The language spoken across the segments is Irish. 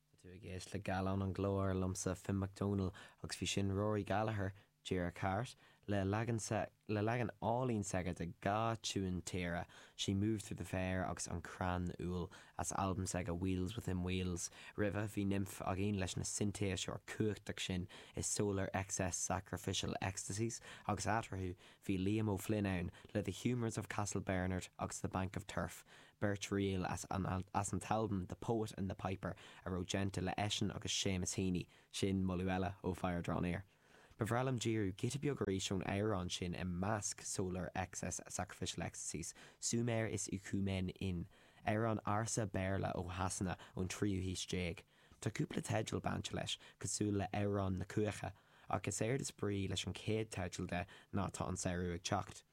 Tá tú ag éisteacht le Gallán an Ghlóir, liomsa, Finn Mac Dónaill, agus bhí sin Rory Gallagher, díreach thart, le leagan sa, le leagan álainn s'aige de dhá tiúin tíre, She Moved Through the Fair agus An Crann Úll, as albam s'aige Wheels Within Wheels. Roimhe, bhí Nimf againn leis na sintéiseoirí cumhachtach sin i Solar Excess Sacrificial Ecstasies, agus eatarthu, bhí Liam O'Flynn ann le The Humours of Castle Bernard agus The Bank of Turf, Beirt ríl as an as an t-albam The Poet and the Piper a raibh déanta le eisean agus Séamus Heaney, sin moladh eile ó Fire Drawn Air. Ba bhreá liom díriú giota beag arís ón amhrán sin i measc Solar Excess, Sacrificial Ecstasies, Sumer Is Icumen In, amhrán ársa Béarla ó Shasana ón tríú haois déag. Tá cúpla teideal bainte leis, cosúil le Amhrán na Cuaiche, ach is éard is brí leis an chéad teideal de ná tá an samhradh ag teacht.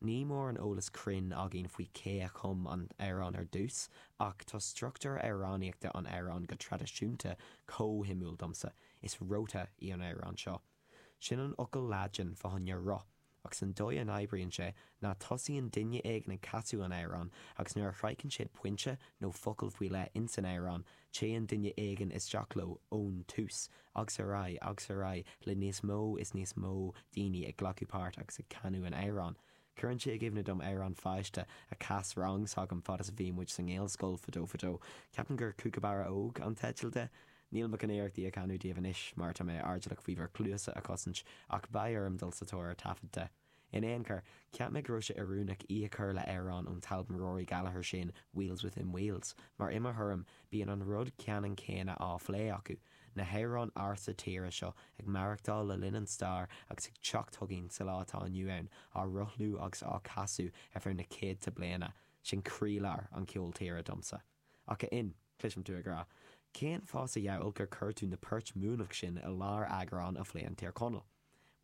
Ní mór an eolas cruinn againn faoi cé a chum an t-amhrán ar dtús, ach tá struchtúr amhránaíochta an amhráin go traidisiúnta chomh suimiúil domsa, is Rota í an amhrán seo. Sin an focal Laidin fá choinne roth, agus an dóigh a n-oibríonn sé ná tosaíonn duine éigin ag casadh an amhráin agus nuair a shroicheann siad pointe nó focal faoi leith insan amhrán téann duine éigin isteach leo ón tús agus ar aghaidh agus ar aghaidh le níos mó is níos mó daoine ag glacadh páirt agus ag canadh an amhráin. Cuireann sé i gcuimhne dom amhrán pháiste a chas rang s'agam fad is a bhí muid sa nGaelscoil fadó fadó, ceapaim gur 'Cúcabarra Óg' an teideal de. Níl mé chun iarracht í a chanadh daoibh anois mar tá mé airdeallach faoi bhur cluasa a chosaint ach beidh orm dul sa tóir ar taifead de. In aon chor, cheap mé go raibh sé oiriúnach í a chur le hamhrán ón t-albam Rory Gallagher sin Wheels Within Wheels, mar i mo thuairim, bíonn an rud ceannan céanna á phlé acu, na hamhráin ársa tíre seo ag maireachtáil le linn an stair agus ag teacht chugainn sa lá atá inniu ann, á rothlú agus á casadh ar feadh na céadta bliana, sin croílár an cheoil tíre domsa. Ach a Fhinn, cloisim tú ag rá, cén fáth sa diabhal gur chuir tú na poirt Muimhneach sin i lár eagrán a phléann Tír Chonaill?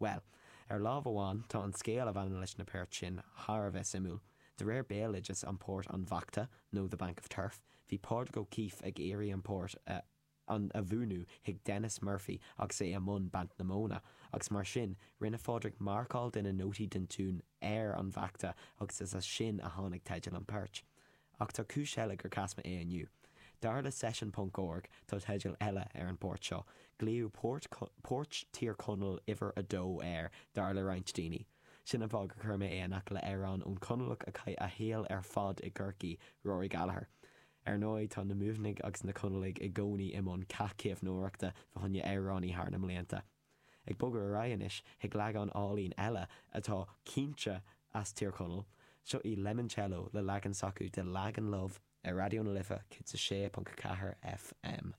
Bhuel, ar lámh amháin, tá an scéal a bhaineann leis na poirt sin thar a bheith suimiúil. De réir béaloideas an phort an Bhachta nó The Bank of Turf, bhí Pádraig O'Keeffe ag iarraidh an port a an a mhúineadh chuig Denis Murphy agus é i mbun banc na móna agus mar sin, rinne Pádraig marcáil de na nótaí den tiún ar an Bhachta agus is as sin a tháinig teideal an phoirt. Ach tá cúis eile gur chas mé é inniu. Dar le session punc org, tá teideal eile ar an bport seo, glaodh port, Port Thír Chonaill uimhir a dó air, dar le roinnt daoine. Sin an fáth gur chuir mé é in aice le amhrán ón Conallach a chaith a shaol ar fad i gCorcaí, Rory Gallagher. Ar ndóigh, tá na Muimhnigh agus na Conallaigh i gcónaí i mbun cath caomhnóireachta fá choinne amhránaithe thar na mblianta. Ag bogadh ar aghaidh anois chuig leagán álainn eile atá cinnte as Tír Chonaill, seo í Lemoncello le leagan s'acu de Lagan Love ar Raidió na Life 106.4 FM.